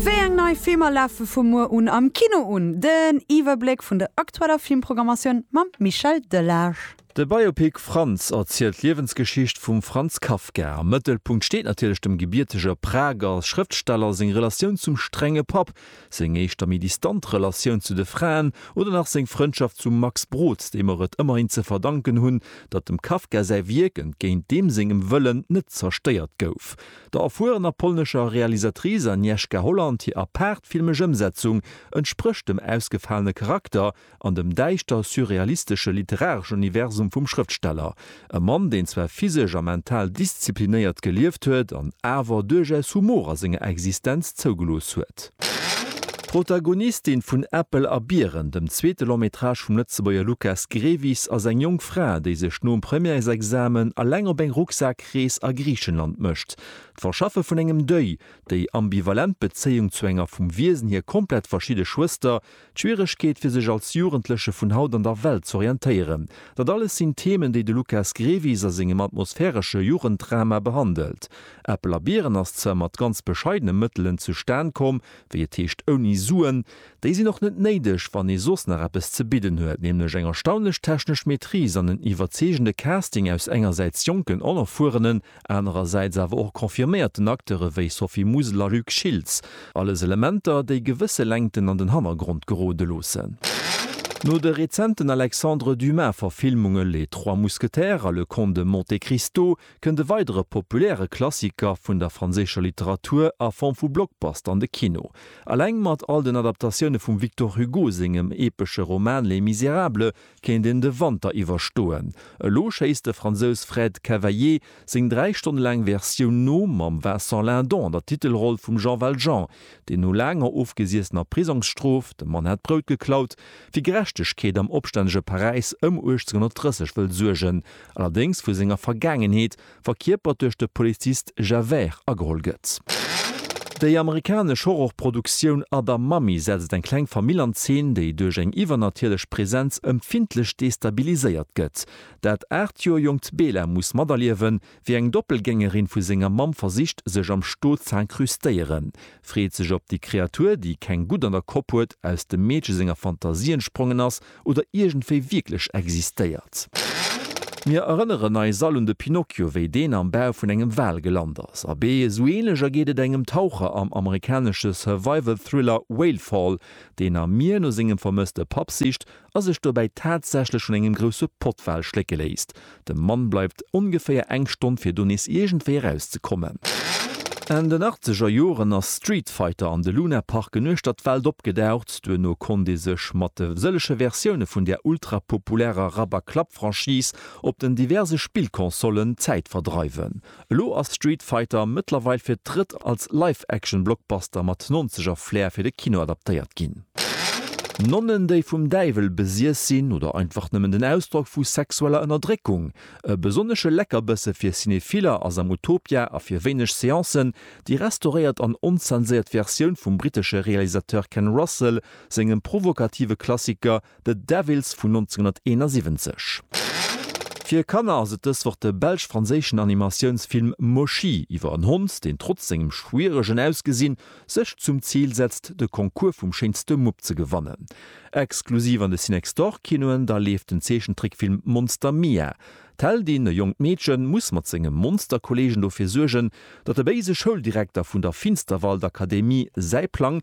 Wéi eng nei Filmer lafe vu muer un am Kino un? Den Iwwerbléck vun der aktueller Filmprogrammatioun mam Michel Delage. De Biopic Franz erzielt d'Liewensgeschicht vum Franz Kafka. Am Mëttelpunkt steet natierlech dem gebiertege Prager Schrëftsteller seng Relatioun zum strenge Papp, seng éischter méi distant Relatioun zu de Fraen oder nach seng Frëndschaft zum Max Brod, deem mer et ëmmerhin ze verdanken hunn, datt dem Kafka säi Wierk, entgéint deem sengem Wëllen, net zerstéiert gouf. Der erfuerener polnescher Realisatrice Agnieszka Holland hir apaart filmesch Ëmsetzung entsprécht dem ausgefalene Charakter an dem däischter surrealistesche literareschen Universum vum Schrëftsteller. E Mann, deen zwar physesch a mental disziplinéiert gelieft huet an awer duerchaus Humor a senger Existenz zougelooss huet. D'Protagonistin vun Äppel a Biren, dem zweete Long-métrage vum Lëtzebuerger Lukas Grevis, ass eng jonk Fra, déi sech nom Premièresexamen eleng op eng Rucksak-, Krees a Griichenland mécht. D'Verschaffe vun engem Deuil, déi ambivalent Bezéiung zu enger vum Wiesen hier komplett verschidde Schwëster, d'Schwieregkeet fir sech als Jugendleche vun haut an der Welt z'orientéieren, dat alles sinn Themen, déi de Lukas Grevis a sengem atmosphäresche Jugenddrama behandelt. Äppel a Biren ass zwar mat ganz bescheidene Mëttelen zustan komm, wéi et heescht ouni Suen, Déi sinn och net néideg, wann ee soss nach eppes ze bidden huet, nämlech eng erstaunlech technesch Maîtrise an en iwwerzeegende Casting aus engersäits jonken onerfuerenen, anerersäits awer och confirméierten Acteure wéi Sophie Musil a Luc Schiltz. Alles Elementer, déi gewësse Längten an den Hannergrond gerode loossen. No de rezenten Alexandre Dumas-Verfilmunge Les Trois Mousquetaires a Le Comte de Monte Cristo kënnt e weidere populäre Klassiker vun der franséischer Literatur a Form vu Blockbuster an de Kino. Eleng mat all den Adaptatioune vum Victor Hugo sengem epesche Roman Les Misérables kéint een de Wanter iwwerstoen. Elo schéisst de Fransous Fred Cavaillé seng dräi Stonne laang Versioun no, mam Vincent Lindon an der Titelroll vum Jean Valjean. Déi no laanger ofgesiessener Prisongsstrof, dem Mann hat d'Brout geklaut, fir Gerechtegkeet am opstännege Paräis ëm 1830 wëll suergen, allerdéngs vu senger Vergaangenheet, verkierpert duerch de Polizist Javert, ageholl gëtt. Déi amerikanesch Horrorproduktioun Other Mummy setzt eng kleng Famill an Zeen, déi duerch eng iwwernatierlech Presenz ëmfindlech destabiliséiert gëtt. Dat aacht Joer jonkt Bela muss materliewen, Wéi eng Doppelgängerin vu senger Mamm versicht, sech am Sto z'incrustéieren, freet sech op déi Kreatur, déi keng Gutt an der Kopp huet, aus dem Meedche senger Fantasie entsprongen ass oder iergendwéi wierklech existéiert. Mir erënneren eis all un de Pinocchio, wéi deen am Bau vun engem Wal gelant ass. Abee, esou änlech ergeet et engem Taucher am amerikanesche Survival-Thriller Whale Fall, deen am Mier no sengem vermësste Papp sicht a sech dobäi tatsächlech vun engem grousse Pottwal schlécke léisst. De Mann bleift ongeféier eng Stonn, fir do nees iergendwéi eraus ze kommen. Enn den achtzeger Joren ass Street Fighter an de Luna Parken uechter d'Welt opgedaucht. Duerno konnt ee sech mat de sëllege Versioune vun där ultrapopulärer Rabberklapp-Franchise op den diverse Spillconsollen d'Zäit verdreiwen. Elo ass Street Fighter mëttlerweil fir d'drëtt als Live-Action-Blockbuster mat Nonzeger-Flair fir de Kino adaptéiert ginn. Nonnen, déi vum Däiwel besiess sinn, oder einfach nëmmen den Ausdrock vu sexueller Ënnerdréckung? E besonnesche Leckerbësse fir Cinephiller ass am Utopia a fir wéineg Seancen déi restauréiert an onzenséiert Versioun vum brittesche Realisateur Ken Russell sengem provokative Klassiker The Devils vun 1971. Fir Kanner ass et dës Woch de belsch-franséischen Animatiounsfilm Moshi iwwer en Hond, deen trotz sengem schwieregen Ausgesinn sech zum Zil setzt, de Concours vum schéinste Mupp ze gewannen. Exklusiv an de Cinextorkinoen da leeft den Zeechentrickfilm Monster Mia. D'Heldin, e jonkt Meedchen, muss mat senge Monsterkolleegen dofir suergen, datt de béise Schouldirekter vun der Finsterwaldakademie säi Plang